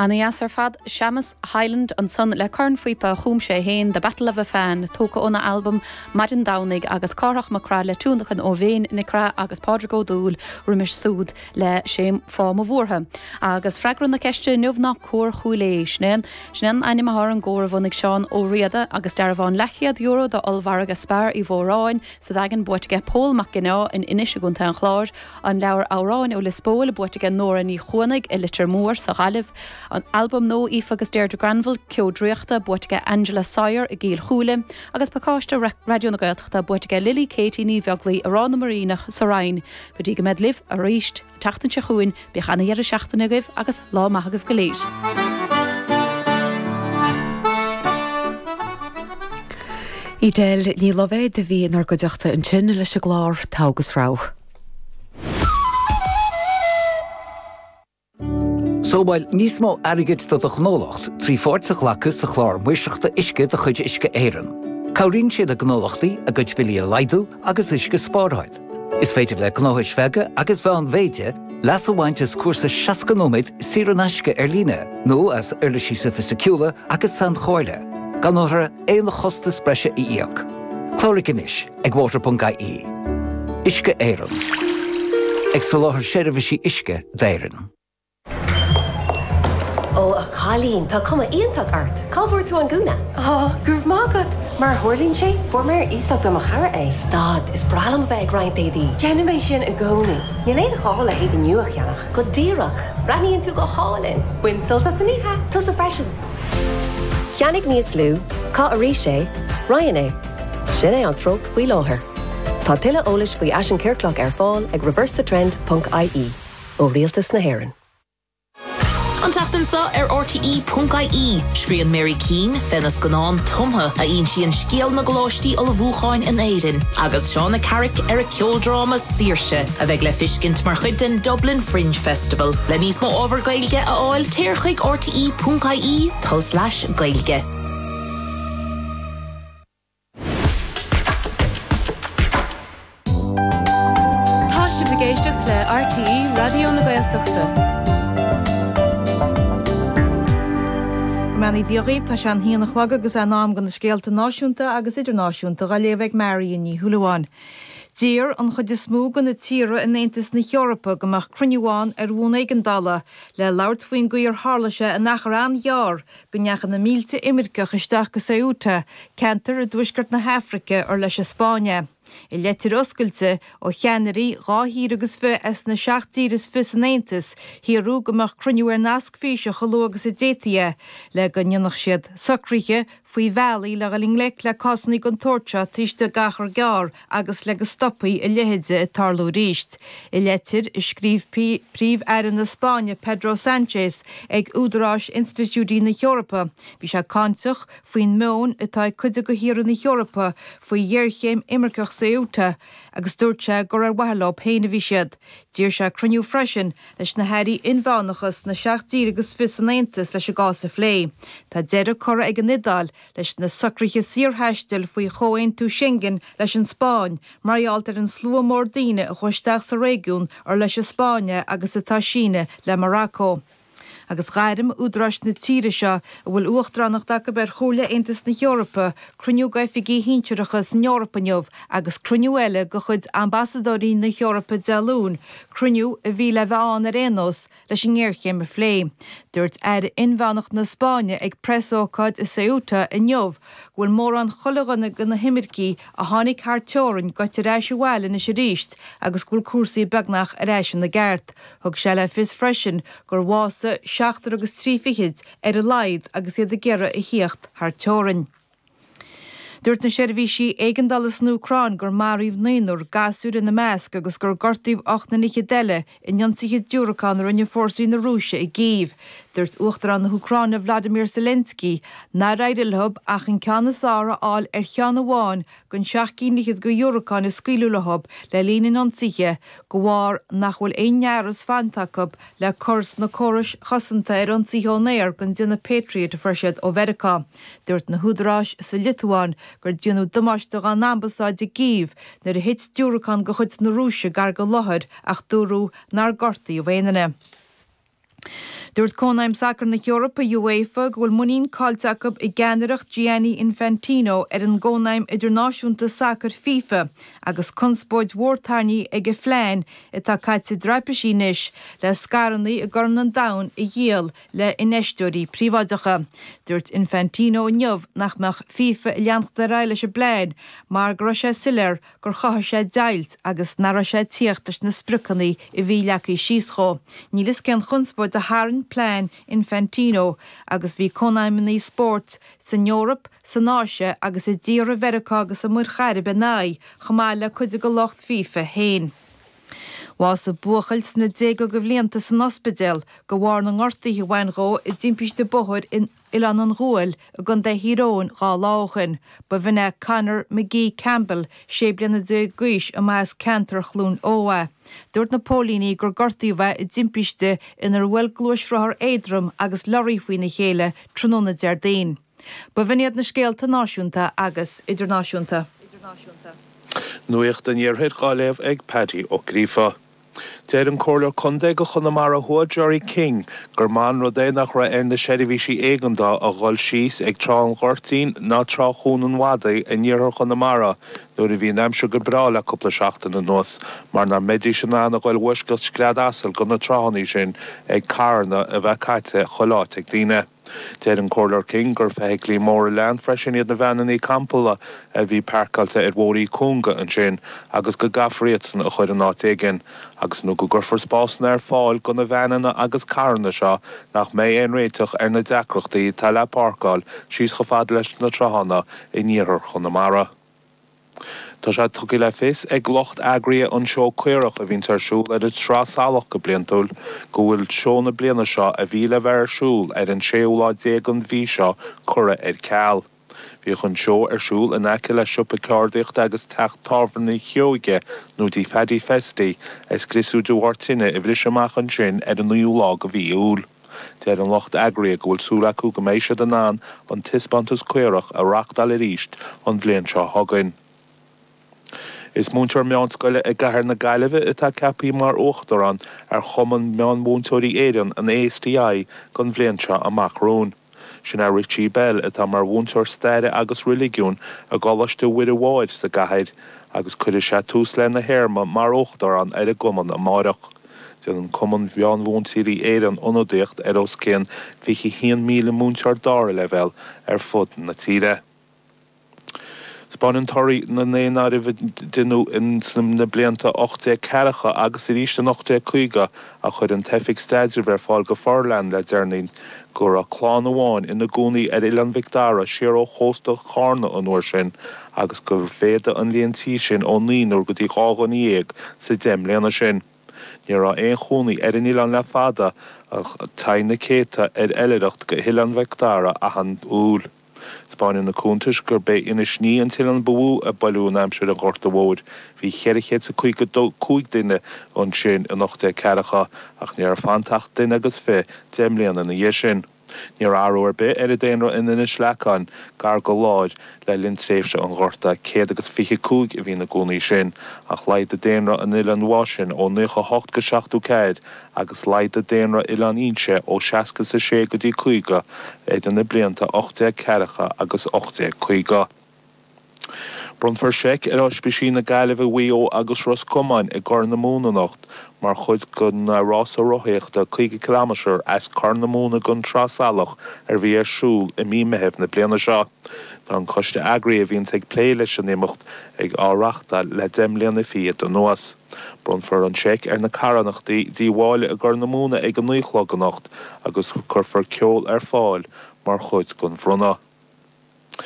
Ana dheas ar fad. Séamus Hyland ansan le cornphíopa a chum sé fhéin, The Battle of Afain, tógtha óna albam Maidin Domhnaigh agus Cárthach Mac Craith le tionlacan ó Mhéin Nic Craith agus Pádraig Ó Dubhghaill roimis súd le Sé Fáth Mo Bhuartha. Agus freagra na ceiste inniu ná Cór Chúil Aodha. Sin é an Sin é an ainm athá ar an gcór a bhunaigh Seán Ó Riada agus dearbhán leathchéad euro do Ollmhargadh Spar Uí Mhóráin, sa Daingean, buaite aige Pól Mac Ginneá in Inis i gContae an Chláir, an leabhar Amhráin ó Lios Póil, buaite aige Nóra Ní Chuanaigh i Litir Mór sa Ghaillimh, an albam nua Aoife agus Deirdre Granville, Ceo Draíochta, buaite aige Angela Sawyer i gCill Chúile, agus pacáiste Raidió na Gaeltachta, buaite aige Lily Katie Ní Bheaglaoi i Ráth na mBiríneach sa Rinn, go dtí go mbead libh arís. an tseachtain seo chugainn. Bíodh an-dheireadh seachtaine agaibh agus lá maith agaibh go léir. Edel Ní Loibhéad a bhí inár gcuideachta ansin leis an gclár Togha agus Rogha. Sábháil níos mó airgid do do ghnólacht trí pháirt a ghlacadh sa chlár maoirseachta uisce de chuid Uisce Éireann. Cabhraíonn sé le gnólachtaí a gcuid billí a laghdú agus uisce a spáráil. Is féidir le gnóthais bheaga agus mheánmhéide leas a bhaint as cúrsa 60 nóiméad saor in aisce ar líne nó as uirlisí sofaisticiúla agus sainchomhairle, gan orthu aon chostas breise a íoc. Cláraigh anois ag water.ie. Uisce Éireann. Ag soláthar seirbhísí uisce d'Éirinn. Ó, a chailín, tá cuma iontach ort. Cá bhfuair tú an gúna? Ó, go raibh maith agat. Mar a tharlaíonn sé, fuair mé ar iasacht ó mo chara é. Stad, is breá liom a bheith ag roinnt éadaí. Déanaim é sin i gcónaí. Níl aon ghá le héadaí nua a cheannach. Go díreach. Breathnaíonn tú go hálainn. Bain sult as an oíche. Tusa freisin. Ceannaigh níos lú, caith arís é, roinn é. Sin é an treocht faoi láthair. Tá tuilleadh eolais faoi fhaisean ciorclach ar fáil ag reversethetrend.ie. ó Rialtas na hÉireann. An tseachtain seo ar RTÉ.ie, scríobhann Mary Keane fé na scannán Tumtha a insíonn scéal na gcoláistí ullmhúcháin in Éirinn agus Shauna Carrick ar a ceoldráma Saoirse, a bheidh le feiscint mar chuid den Dublin Fringe Festival. Le níos mó ábhar Gaeilge a fháil, téir chuig rte.ie tulslais gaeilge. Tá sibh ag éisteacht le RTÉ Raidió na Gaeltachta. Go mbeannaí Dia dhaoibh, tá sé an haon a chlog agus é in am do na scéalta náisiúnta agus idirnáisiúnta dá léamh ag Marion Ní Shúilleabháin. D'iarr an chuid is mó de na tíortha in Aontas na hEorpa go mbeadh cruinniú ann ar bhonn éigeandála le labhairt faoin gcaoi ar tharla sé in achar an-ghearr go ndeachaigh na mílte imirceach isteach go Ceuta, ceantar i dtuaisceart na hAfraice ar leis an Spáinn é. I leitir oscailte ó cheannairí dhá thír agus fiche as na seacht dtír is fiche san Aontas, hiarradh go mbeadh cruinniú ar nasc físe chomh luath agus a d'fhéadfaí é, le go ndéanfadh siad socruithe faoi bhealaí le dhul i ngleic le cásanna den tsórt seo taobh istigh d'achar gearr agus le go stopfaí a leithéide ag tarlú arís. I leitir a scríobh Príomh Aire na Spáinne Pedro Sanchez ag údaráis institiúidí na hEorpa bhí sé cáinteach faoin meoin atá ag cuid de thíortha na hEorpa faoi ghéarchéim imirceach Ceuta agus dúirt sé gur ar mhaithe leo féin a bhí siad. D'iarr sé cruinniú freisin leis na hairí inmheánacha sna seacht dtír agus fiche san Aontas leis an gcás a phlé. Tá deireadh curtha ag an Iodáil Leis na socruithe saorthaistil faoi Chomhaontú Schengen leis an Spáinn, mar gheall ar an slua mór daoine a chuaigh isteach sa réigiún ar leis an Spáinn é agus atá sínte le Morocco. Agus ghairm údaráis na tíre seo, a bhfuil uachtaránacht acu ar Chomhairle Aontas na hEorpa, cruinniú d'oifigigh shinsearacha san Eoraip inniu agus cruinniú eile de chuid ambasadóirí na hEorpa Dé Luain, cruinniú a bhí le bheith ann ar aon nós, leis an ngéarchéim a phlé. Dúirt Aire Inmheánach na Spáinne ag preasócáid i Ceuta inniu go bhfuil mórán chuile dhuine de na himircigh a tháinig thar teorainn gaite ar ais abhaile anois aríst agus go bhfuil cúrsaí beagnach ar ais ina gceart. Thug sé le fios freisin gur bhásaigh seachtar agus trí fichid ar a laghad agus iad ag iarraidh a thíocht thar teorainn. Dúirt na seirbhísí éigeandála san Úcráin gur maraíodh naonúr, gasúir ina measc, agus gur gortaíodh ocht nduine fhichead eile in ionsaithe diúracán a rinne fórsaí na Rúise i gCív. Dúirt Uachtarán na hÚcráine Volodymyr Zelensky nár éirigh leo ach an ceann is fearr a fháil ar cheann amháin den seacht gcinn fhichead de dhiúracáin a scaoileadh leo le linn an ionsaithe de bharr nach bhfuil aon fhearas fanta acu le cur sna córais chosanta ar ionsaithe ón aer den déanamh Patriot a fuair siad ó Mheiriceá. Dúirt na húdaráis sa Liotuáin gur déanadh damáiste dá n-ambasáid i gCív nuair a thit diúracán de chuid na Rúise gar den láthair ach dúradh nár gortaíodh aon duine. Dúirt Cónaidhm Sacair na hEorpa, UEFA, go bhfuil muinín caillte acu i gceannaireacht Gianni Infantino ar an gCónaidhm Idirnáisiúnta Sacair, fifa, agus conspóid mhór tarraingthe ag a phlean, atá caite i dtraipisí anois, le scaireanna i gCorn an Domhain a dhíol le infheisteoirí príobháideacha. Dúirt Infantino inniu nach mbeadh FIFA ag leanacht ar aghaidh leis an bplean mar go raibh sé soiléir gur chothaigh sé deighilt agus nach raibh sé ag tíocht leis na spriocanna a bhí leagtha síos dhó. Níl fhios cén chonspóid a tharraing plean Infantino agus bhí cónaidhmeanna spóirt san Eoraip, san Áise agus i dtíortha Mheiriceá agus an Mhuir Chairib ina aghaidh, chomh maith le cuid de lucht FIFA féin. Bhásaigh buachaill sna déaga de bhlianta san ospidéal de bharr na ngortaithe a bhain dhó i dtimpiste bóthair in Oileán an Ghuail i gContae Thír Eoghain dhá lá ó shin. Ba in é Conor Magee Campbell, sé bliana déag d'aois, arb as ceantar Chluain Eo é. Dúirt na póilíní gur gortaíodh é i dtimpiste inar bhuail gluaisrothar éadrom agus lorraí faoina chéile tráthnóna Déardaoin. Ba in iad na scéalta náisiúnta agus idirnáisiúnta. Nuacht an Iarthair dhá léamh ag Paddy Ó Gríofa. Deir an Comhairleoir Contae do Chonamara Thuaidh Gerry King gur maith an rud é nach raibh ar na seirbhísí éigeandá a dhul síos ag Trá an Ghoirtín ná Trá Chuan an Mhadaidh in iarthar Chonamara nuair a bhí an aimsir go breá le cúpla seachtain anuas mar nach mbeidís in ann a dhul i bhfoisceacht scread asail do na tráthanna sin ag carranna a bheith caite chuile áit ag daoine. Deir an Comhairleoir King gur feithiclí móra leathan freisin iad na veaineanna campála a bhí páirceáilte ar bhóithre cúnga ansin agus go gcaithfear iadsan a chuir in áit éigin agus, nó go gcuirfear spásanna ar fáil do na veaineanna agus carranna seo nach mbeidh aon réiteach ar na deacrachtaí atá le páirceáil síos chomh fada leis na tráthanna in iarthar Chonamara. Tá sé tugtha le fios ag lucht eagraithe an tSeó Caorach a bhíonns ar siúl ar an tSraith Salach go bliantúil go bhfuil seó na bliana seo a bhí le bheith ar siúl ar an séú lá déag den mhí seo curtha ar ceal. Bhíodh an seó ar siúl in aice le siopa ceardaíochta agus teach tábhairne Sheoige nó Tigh Phaddy Festy a scriosadh de bharr tine a bhris amach ansin ar an naoú lá de mhí Iúil. Deir an lucht eagraithe go bhfuil súil acu go mbeidh siad in ann an Taispeántas Caorach a reachtáil arís an bhliain seo chugainn. Is múinteoir meánscoile i gCathair na Gaillimhe atá ceapthaí mar Uachtarán ar Chumann Meánmhúinteoirí Éireann, an ASTI, don bhliain seo amach romhainn. Sin é Richie Bell atá mar mhúinteoir Staire agus Reiligiúin i gColáiste Muire Máthair sa gcathair agus cuirfidh sé tús lena théarma mar Uachtarán ar an gCumann amárach. Déanann Cumann Mheán-Mhúinteoirí Éireann ionadaíocht ar os cionn 21,000 múinteoir dara leibhéal ar fud na tíre. Spáineann torthaí na ndaonáirimh a deineadh in sna blianta 1840 agus arís in 1850, a chuir an Oifig Staidrimh ar fáil go forleathan le deireanaí, go raibh clann amháin ina gcónaí ar Oileán Mhic Dara siar ó chósta Chárna an uair sin, agus gur mhéadaigh an líon tí sin ó naonúr go dtí dhá dhuine dhéag sa deich mbliana sin. Níl aon chónaí ar an Oileán le fada ach téann na céadta ar oilithreacht go hOileán Mhic Dara gach aon Iúil. Spáineann na cuntais gurb é Inis Ní an t-oileán ba mhó a bánaíodh in aimsir an Ghorta Mhóir. Bhí cheithre chéad is a caoga cúig duine ansin in ocht déag ceathracha ach ní raibh fanta ach duine agus fiche deich mbliana ina dhiaidh sin. Ní raibh athrú ar bith ar an daonra in Inis Leacáin, gar go leor, le linn tréimhse an Ghorta, céad agus fiche cúig a bhí ina gcónaí ansin, ach laghdaigh daonra in Oileán Mháisean ó naocha a hocht go seachtó ceathair, agus laghdaigh daonra Oileán Fhínse ó seasca is a sé go dtí caoga idir na blianta ocht déag ceathracha agus ocht déag caoga. Bronnfar seic ar Ospísí na Gaillimhe, Mhaigh Eo agus Ros Comáin i gCorr na Móna anocht mar chuid den rása rothaíochta 50 ciliméadar as Corr na Móna go An Trá Salach a bhí ar siúl i mí Meithimh na bliana seo. Tá an coiste eagraí a bhíonns ag plé leis an imeacht ag á reáchtáil le deich mbliana fichead anuas. Bronnfar an seic ar na carthanachtaí Tí Mháille i gCorr na Móna ag a naoi a chlog anocht agus cuirfear ceol ar fáil mar chuid den bhronnadh.